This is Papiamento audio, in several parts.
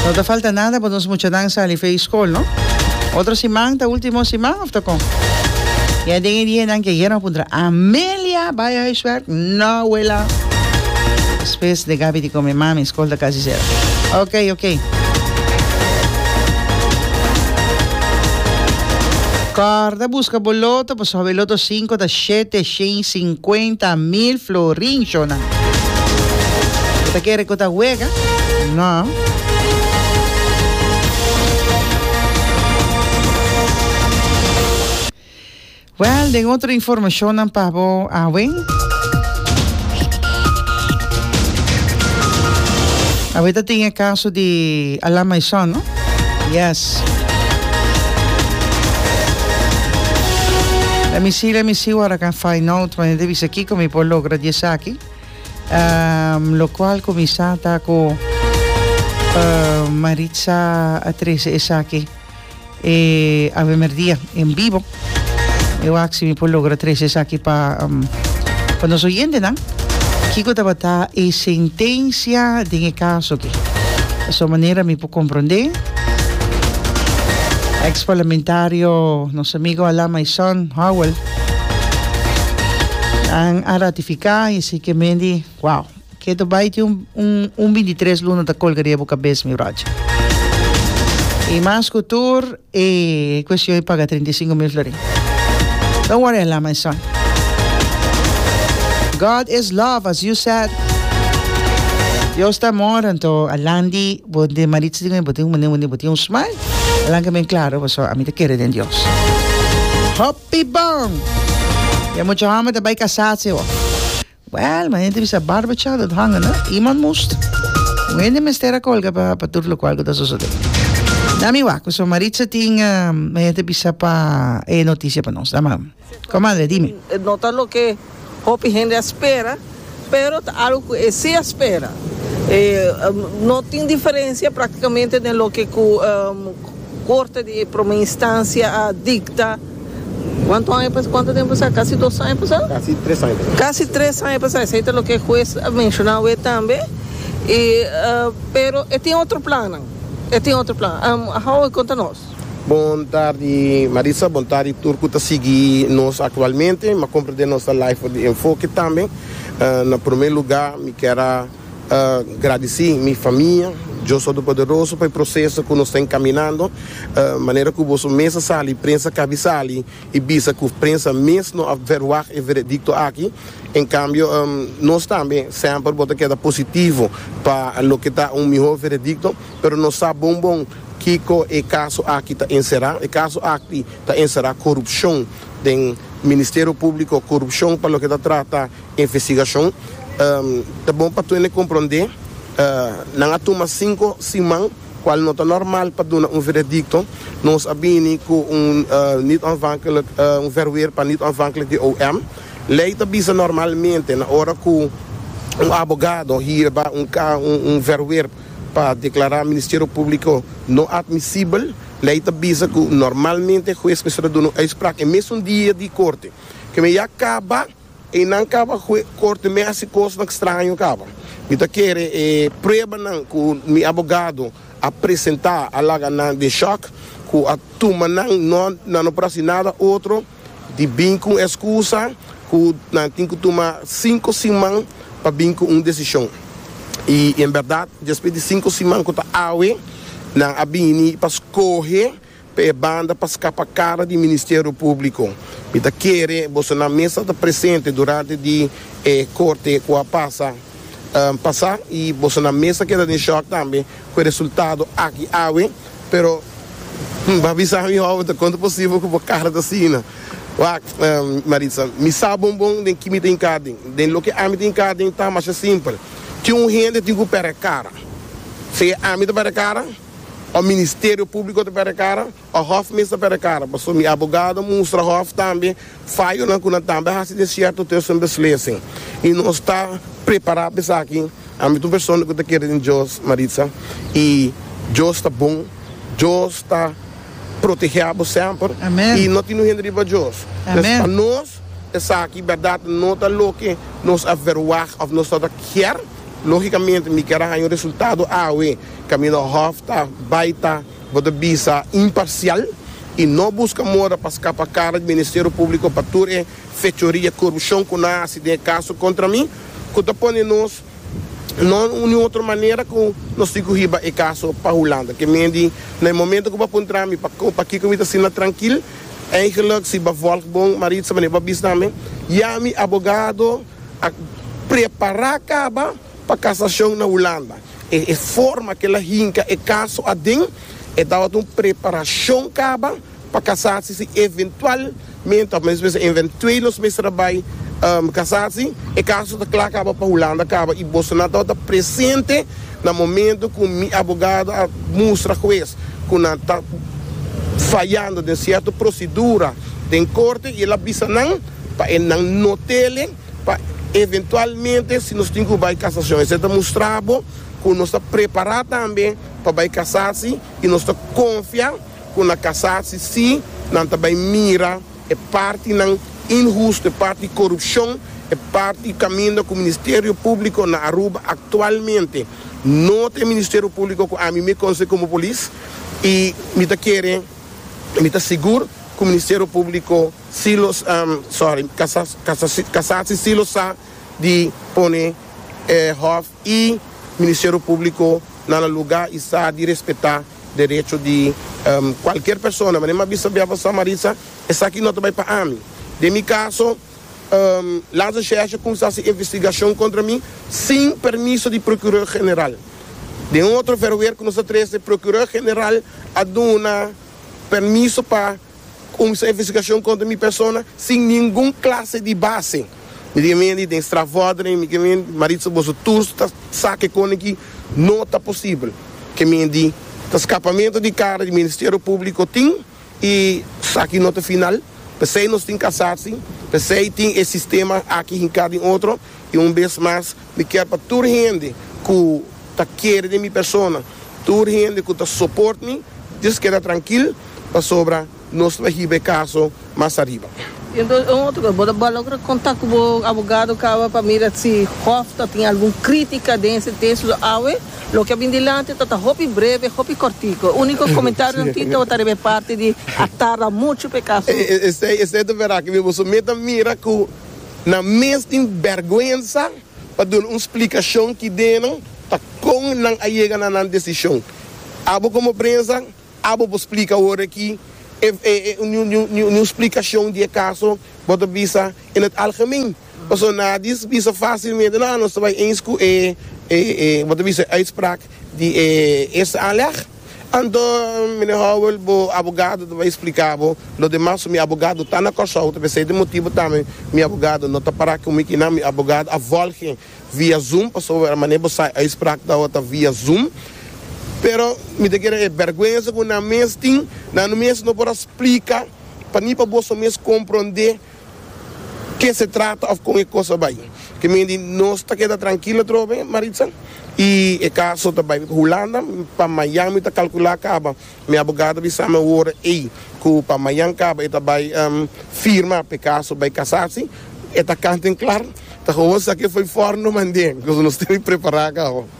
No ta falta nada pa nos muchanan sali fei skol no. Otro siman ta ultimo siman of ta kon? I a den e dianan ke Guerra a puntra, Amelia bai huiswerk? No wela. Spes de Gabi di kome, Mami, skol ta kasi sera. Ok, ok. Kòrda buska bo loto, pasobra e loto sinku ta shete shen i sinkuenta mil florin, shona. Bo ta kere ku ta wega? No. Wèl, den otro informashonnan pa bo awe. Awe ta tin e kaso di Alan Maison, no? Yes. Let me see, let me see what I can find out. Mane te bisa kiko mi por logra di esaki. Um, lo cual cominsá ta ku uh, Maritza a trece esaki eh, awe merdia en vivo. Eu aksi mi por logra trese esaki pa pa nos oyentenan. Kiko tabata e sentensia den e kaso aki? Pasobra manera mi por komprondé, eks parlamentario nos amigo Alan Maison Howell a ratifiká i a siy ke men di wow! Keto bai tin un un un bintitres luna ta colga riba bo cabes mi brocha. Y mas cu tur e cuestion di paga trinta y cinco mil florin. Don't worry Alan my son. God is love as you said. Dios ta amor anto Alan di bo den Maritza di bo tin un mane wende bo tin un smile Alan ke men claro bo so ami ta kere den Dios. Hopi bon! E mucha homber ta bai casa si bo. Well, mi hende bisa barba cha dat hanga na iemand moest. Un hende mester a colga pa pa tur locual cu ta sosode. Dam mi wak, pasobra Maritza tin, mi hende bisa pa e noticia pa nos. Dam am. Comadre, dime. No ta loke hopi hende a spera, pero ta algo cu e si a spera. E no tin diferencia practicamente den loke cu Corte di Prome Instancia a dicta. Cuanto aña pasa? Cuanto tempo pasa? Casi dos aña pasa? Casi tres aña pasa. Casi tres aña pasa, esey ta loke e huez a menciona awe tambe, y pero e tin otro plannan, e tin otro plannan. How e conta nos? Bon tardi Marisa, bon tardi tur cu ta sigui nos actualmente, ma comprende nos ta live for di Enfoke tambe. Na prome lugar mi kier a. A gradisí mi famia, Dios Todopoderoso, pa e proseso ku nos ta enkaminando. Manera ku boso mes a sali, prensa kabi sali i bisa ku prensa mes no a verwagt e veredikto aki. En kambio, nos tambe semper bo ta keda positivo pa loke ta un mihó veredikto, pero nos sa bon bon kiko e kaso aki ta enserá. E kaso aki ta enserá korupshon den Ministerio Públiko, korupshon pa loke ta trata Investigashon Ta bon pa Twene komprondé Nan a tuma sinku siman kual no ta normal pa duna un veredikto Nos a bini ku un niet-onafhankelijk un verweer pa niet-onafhankelijk di OM Lei ta bisa normalmente na ora ku un abogado hierba un un verweer pa deklará Ministerio Públiko no atmisibel Lei ta bisa ku normalmente hues mester a duna un uitspraak e mesun dia di korte Kue mi a kaba E nan kaba hue korte mi a hasi kosnan kstraño kaba. Mi ta kere e pruebanan ku mi abogado a presentá a laga nan den shòk ku a tuma nan no nan no por hasi nada otro di bin ku un eskusa ku nan tin ku tuma sinku siman pa bin ku un desishon. I en bèrdat despues di sinku siman ku ta awe nan a bini pa skohe. Pa e banda pa scapa cara di Ministerio Publico, mi ta kere boso nan mes a ta presente durante di e corte cu a pasa pasa y boso nan mes a keda den shock tambe cu e resultado aki awe, pero mi a bisa mi owe ta con ta posible cu bo cara ta asina? Wacht, Maritza, mi sa bon bon den ki mi ta hinca den, den loke ami ta hinca den ta masha simpel, tin un hende tin cu pera e cara, si ami ta pera e cara? Of Ministerio Públiko ta pèrdè kara, of Hòf mes ta pèrdè kara, pasobra mi abogado a mustra Hòf tambe fayonan ku nan tambe a hasi den sierto test den beslesen. I nos ta prepará pa esaki. Ami ta un persona ku ta kere den Dios, Maritza, i Dios ta bon. Dios ta protegé abo semper i no tin un hende riba Dios. Entonces, pa nos esaki bèrdat no ta loke nos a verwagt of nos tabata kier. Lógicamente mi kier a haña un resultado awe, kaminda hòf ta bai ta bo ta bisa imparcial y no busca moda pa scapa cara di Ministerio Publico pa tur e fechoria y corupcion cu nan a haci den e caso contra mi, cu ta pone nos no ni otro manera cu nos tin cu hiba e caso pa Hulanda. Ke men di na e momento cu bo a puntra mi pa pa kico mi ta asina trankil, eigenlijk si bo a volg bon Maritza, wanneer bo a bisa na mi, Ya mi abogado, A prepará kaba pa kasashon na Hulanda. E forma ku el a hinka e kaso aden, e tabata un preparashon kaba pa kasasi si eventualmente, òf mes mester eventueel nos mester a bai kasasi, e kaso ta kla kaba pa Hulanda kaba i bosonan tabata presente na momento ku mi abogado a mustra hues ku nan ta fayando den sierto prosedura den korte i el a bisa nan. pa e nan no tele pa eventualmente si nos tin cu bay casacion esey ta mustra bo cu nos ta prepara tambe pa bay casasi y nos ta confia cu na casasi si nan ta bay mira e partinan inhusto e parti corupcion e parti caminda cu Ministerio Publico na Aruba actualmente no ta e Ministerio Publico cu ami me conoce como polis y mi ta kere mi ta sigur cu Ministerio Publico Si lo sorry, kasa si si lo sa di pone e hòf i ministerio públiko na nan lugá i sa di respetá derecho di kualker persona. Manera mi a bisa bia pa Samarisa, esaki no ta bai pa ami. Den mi kaso, Lanza Xerxes a kuminsá si investigashon kontra mi sin permiso di prokuró general. Den un otro verwer ku nos ta trese, prokuró general a duna permiso pa. Kumsa e investigashon kontra mi persona sin ningun klase di base. Mi tin mindi den strafvordering, mi tin mindi, Maritza boso tur ta sa kikon aki no ta posibel. Ke mindi ta skapamentu di kara di Ministerio Públiko tin i esaki no ta final, p'esei nos tin kasasi, p'esei tin e sistema aki hinká den otro i un bes mas Mi kier pa tur hende ku ta kere den mi persona, tur hende ku ta soport mi, djis keda trankil, pasobra nos lo a hiba e kaso mas ariba. I enton un otro kos, bo ta logra kontak ku bo abogado kaba pa mira si hòf ta tin algun krítika den e sentensia. So awe loke a bin dilanti ta ta hopi breve, hopi kòrtiku. Úniko komentario nan tin tabata riba e parti di a tarda muchu pa e kaso. Esei, esei ta verá ke mi bo. So mi ta mira ku. Nan mes tin bèrgwensa pa duna un splikashon ki dena ta kon nan a yega na nan desishon. Abo komo prensa, abo por splika ora ki e niun splikashon di e kaso bo ta bisa en het algemeen. Pasobra nan a bisa fásilmente nan nos ta bai eens ku e bo ta bisa e uitspraak di e eerste aanleg. Anto, Mine Howell, bo abogado ta bay splica bo lo demas so mi abogado ta na Corsou, ta p'esey ta motibo tambe mi abogado no ta para cu mi kinan, mi abogado a volge via zoom, pasobra mane bo sai uitspraak ta ta via zoom, pero mi ta kere e berguenza cu nan mes tin, nan mes no por a splica pa ni pa boso mes compronde. Ke se trata of kon e kos a bai. Ke men di nos ta keda trankil atrobe, Maritza, i e kaso ta bai Hulanda. Pa mayan mi ta kalkula kaba. Mi abogado a bisa mi ora ei ku pa mayan kaba e ta bai firma pa e kaso bai kasasi. E ta kant en klar. Ta houwor sa ke fo'i for no mande, koz nos tene prepará kaba.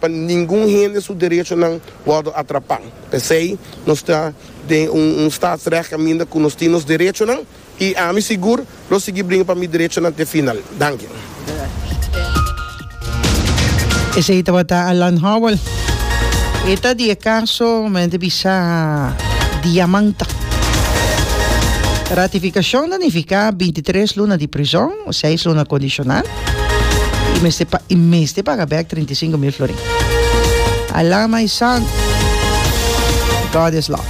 Pa ningun hende su derechonan wòrdu atrapá. P'esei nos ta den un un staatsrecht kaminda ku nos tin nos derechonan i ami sigur lo sigui bringa pa mi derechonan te final. Danki. Esei tabata Alan Howell. E ta di e kaso mi hende bisa diamanta. Ratifikashon ta nifiká binti tres luna di prizòn, seis luna kondishonal. I mester pa, i mester paga bek trinta i sinku mil florin. A la my son, God is love.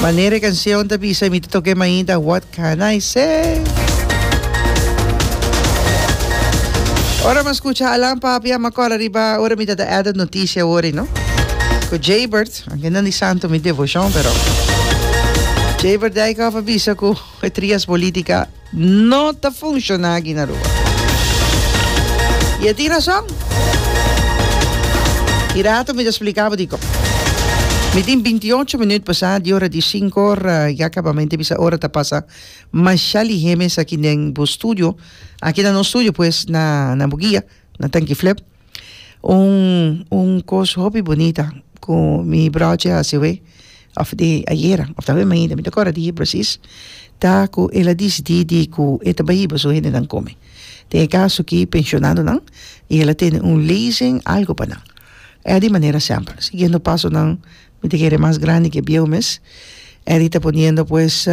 Manera e canción ta bisa, mi ta toca e mainta, what can I say? Ora mi a scucha Alan Papi, a mi a cor ariba ora mi ta da Edad noticia awor, you know. Cu Jaybert, anke no di santo mi devocion, pero Jaybert Dijkhoff a bisa cu e trias politica, No ta funciona aki na Aruba. Y e tin rason. E rato mi ta splica bo dikon. Mi tin binti y ocho minut pasa di ora di sinku or ya caba. Mi ta bisa ora ta pasa masha lihemes aki den bo studio. Aki na nos studio pues na Buguia, na Tanki Flep. Un un cos hopi bonita cu mi broche a hasi'e of di ayera of ta awe mainta mi ta cora di precis ta cu el a dicidi di cu e ta bai hiba su hendenan come den e caso aki pensionadonan y el a tene un leasen algo pa nan e a di manera semple siguiendo pasonan mi ta kere mas grandi ke bieu mes e di ta poniendo pues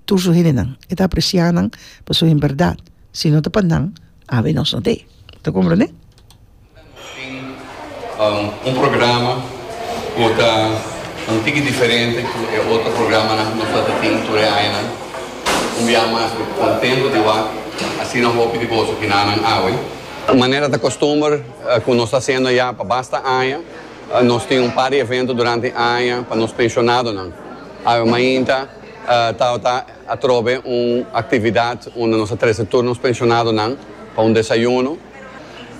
tur su hendenan. E ta apresiá nan pa su hembèrdat, si no ta pa nan, awe nos no t'e. Ta komprendé? Ora nos tin un programa ku ta un tiki diferente ku e otro programanan ku nos tabata tin tur e añanan, un biaha mas ku kontentu di wak, asina hopi di boso kinanan awe. Manera ta kostumber ku nos ta hasiendo ya pa basta aña, nos tin un par di evento durante e aña pa nos pensionadonan. Awe mainta Tao ta atrobe un actividad unda nos a trece tur nos pensionadonan pa un desayuno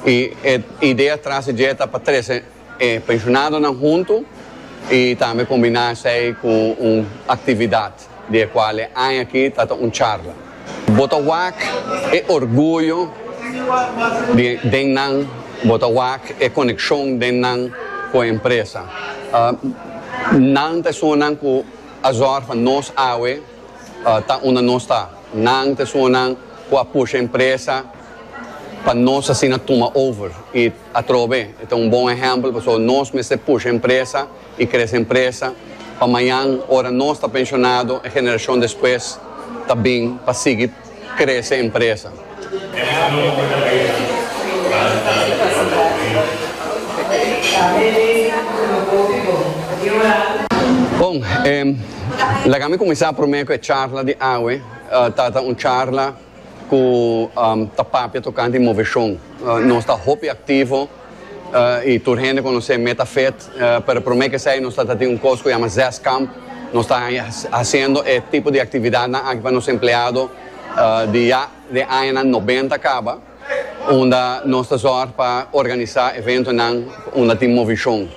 y e idea tras di dje ta pa trece e pensionadonan hunto y tambe combina esey cu un actividad di e cual e aña aki ta ta un charla. Bo ta wak e orguyo den nan, bo ta wak e coneccion den nan cu e empresa. Nan ta esunnan cu A zorg pa nos awe ta unda nos ta. Nan ta esungunan cu a pusha empresa pa nos asina tuma over y atrobe e ta un bon ehempel pasobra nos mester pusha empresa y crece empresa pa mayan ora nos ta pensionado e generacion despues ta bin pa sigui krese empresa. Bon, laga mi kuminsá promé ku e charla di awe. Ta ta un charla ku ta papia tokante moveshon. Nos ta hopi aktivo. y tur hende conoce Metafet, pero prome kesey nos ta ta tin un cos cu yama Zeskamp, nos ta haciendo e tipo di actividadnan aki pa nos empleado di ya den añanan noventa caba, unda nos ta zorg pa organiza eventonan unda tin Movishon,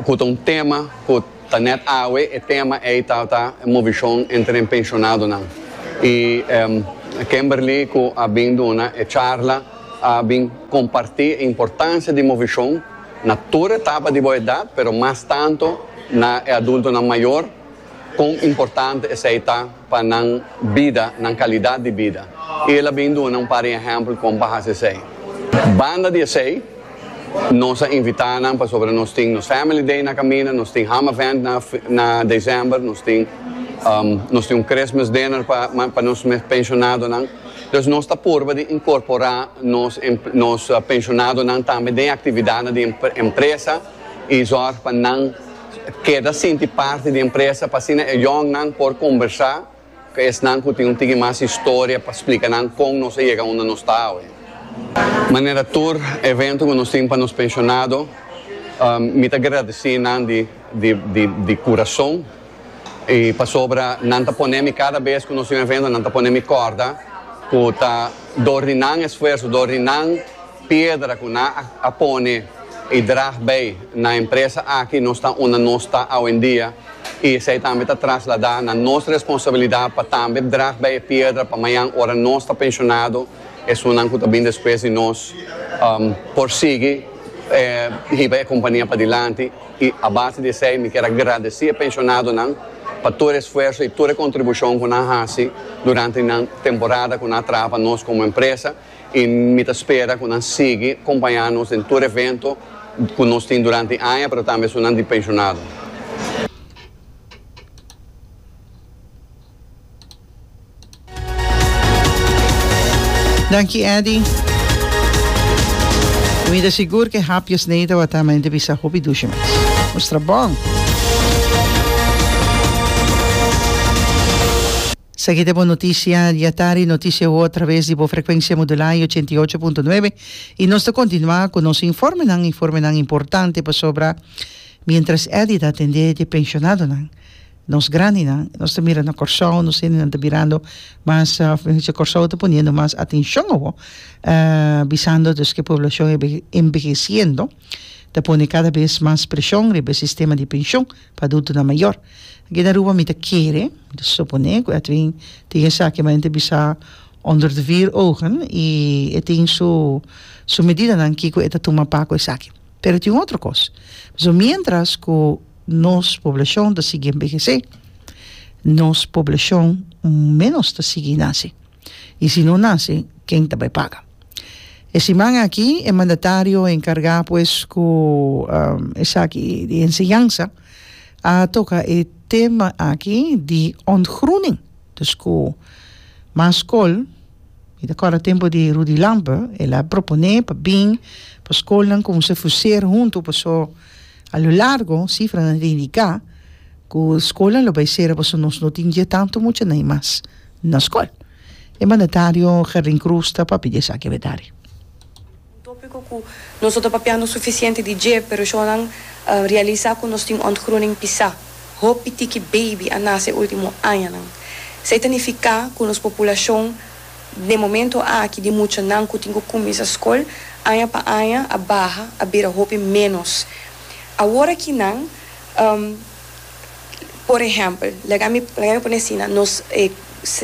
cu ta un tema cu. Ta net awe e tema ey ta ta e movicion entre e pensionadonan. Y Kimberly cu a bin duna e charla a bin comparti e importancia di movicion na tur etapa di bo edad, pero mas tanto na e adultonan mayor, con importante esey ta. pa nan bida, nan kalidat di bida, i el a bin duna un par di ehèmpel kon pa hasi esei. Banda di esei, nos a invitá nan pasobra nos tin nos Family Day na kaminda, nos tin Ham Event na na desèmber, nos tin nos tin un Christmas Dinner pa pa nos penshonado-nan. Dus nos ta purba di inkorporá nos nos penshonado-nan tambe den aktividatnan di empresa i zòrg pa nan. keda sinti parti di empresa pa asina e yòngnan por kombersá ku esnan ku tin un tiki mas historia pa splika nan kon nos a yega unda nos ta awe. Manera tur evento ku nos tin pa nos penshonado, mi ta gradesí nan di kurason i pasobra nan ta pone mi kada bes ku nos tin un evento nan ta pone mi kòrda ku ta dor di nan esfuerso, dor di nan. Piedra cu nan a pone y drag bay na empresa aki nos ta unda nos ta awendia y esey tambe ta traslada na nos responsabilidad pa tambe drag bay e piedra pa mayan ora nos ta pensionado esunnan cu ta bin despues di nos por sigui hiba e compania padilanti y a base di esey mi kier a gradeci e pensionadonan pa tur e esfuerzo y tur e contribucion cu nan a haci durante nan temporada cu nan a traha pa nos como empresa. I mi ta spera ku nan sigui kompañá nos den tur evento ku nos tin durante aña, pero tambe esunnan di penshonado. Danki Eddy. Mi ta sigur ku e hapje snei tabata men di bisa hopi dushi mes. Mustra bon! Esaki ta e bon notisia dia tardi, notisia awo a traves di bo frekwensia modulá y ochenta y ocho punto nuebe, y nos ta kontinuá ku nos informenan, informenan importante pasobra mientras Eddy ta atendé di e penshonadonan, nos grandinan, nos ta mira na Kòrsou, nos hendenan ta birando mas, mihó dicho Kòrsou ta poniendo mas atenshon awo, bisando dus ku e poblashon e enbehesiendo ta pone kada bes mas preshon riba e sistema di penshon. Pa adultonan mayor. Aki na Aruba mi ta kere, mi ta supone cu Edwin tin esaki ma enta bisa onder de vier ogen y e tin su su medidanan kico e ta tuma pa cu esaki. Pero tin un otro cos. Pasobra mientras cu nos poblacion ta sigui enbehece, nos poblacion menos ta sigui nace. y si no nace ken ta bay paga. E siman aki e mandatario encarga pues cu esaki di enseñansa a toca e tema aki di ontgroening dus cu mas scol, mi ta acorda tempo di Rudy Lampe el a propone pa bin pa scolnan como se fuser hunto paso a lo largo cifranan ta indica cu scolnan lo bay cera paso nos no tin dje tanto muchanan y mas na skol. E mandatario Gerlin Croes ta papia di esaki avedari. Un tópiko ku nos no ta papia no sufisiente di dje, pero shonnan a realisá ku nos tin ontgroening pisá. Hopi tiki beibi a nase e último añanan. Esei ta nifiká ku nos populashon den momentu aki di muchanan ku tin ku kuminsá skol aña pa aña a baha, a bira hopi ménos. Awor aki nan. Por ehempel, laga mi laga mi pone asina, nos e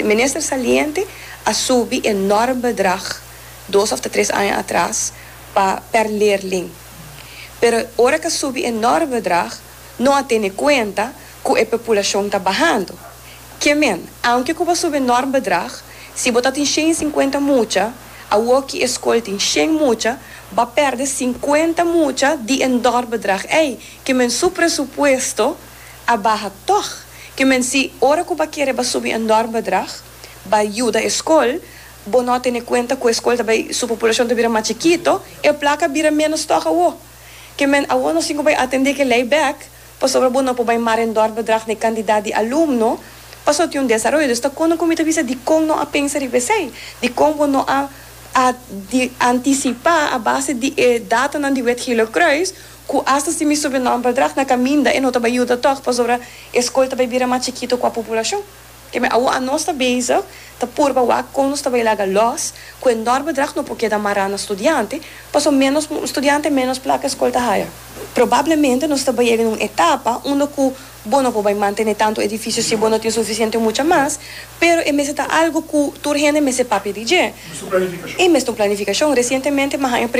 minister saliente a subi e norm bedrag dos of ta tres aña atras pa per leerling, pero ora k'a subi e norm bedrag no a tene kuenta ku e populashon ta bahando. Ke men, aunke ku bo a subi e norm bedrag, si bo ta tin shen i sinkuenta mucha, awoki e skol tin shen mucha, bo a pèrdè sinkuenta mucha di e norm bedrag ei Kimen su presupuesto a baha tòg. Kimen si ora ku ba kere ba subi e nòrm bedrag ba yuda e skol, bo no a tene kuenta ku e skol ta bai su populashon ta bira mas chikito, e plaka a bira ménos tòg awó. Kimen awó nos tin ku bai atendé ke lei bèk pasobra bo no por bai mara e nòrm bedrag na e kantidat di alumno pasobra tin un desaroyo. Dus ta kono ku mi ta bisa dikon no a pensa riba esei? Dikon bo no a a di antisipá a base di e datanan di Wet Gieler Croes? Cu hasta si mi subi nomber drag na caminda e no ta bay yuda tog pasobra e scol ta bay bira mas chikito cua populacion. Keme awo a nos ta bezig ta purba wak con nos ta bay laga los cu e norber drag no por keda mara na studiante paso menos studiante menos placa e scol ta haya. Probablemente nos ta bay yega na un etapa unda cu bo no por bay mantene tanto edificio si bo no tin suficiente mucha mas pero e mester ta algo cu tur hende mester papia di dje. E mester un planificacion. Recientemente mi a haña.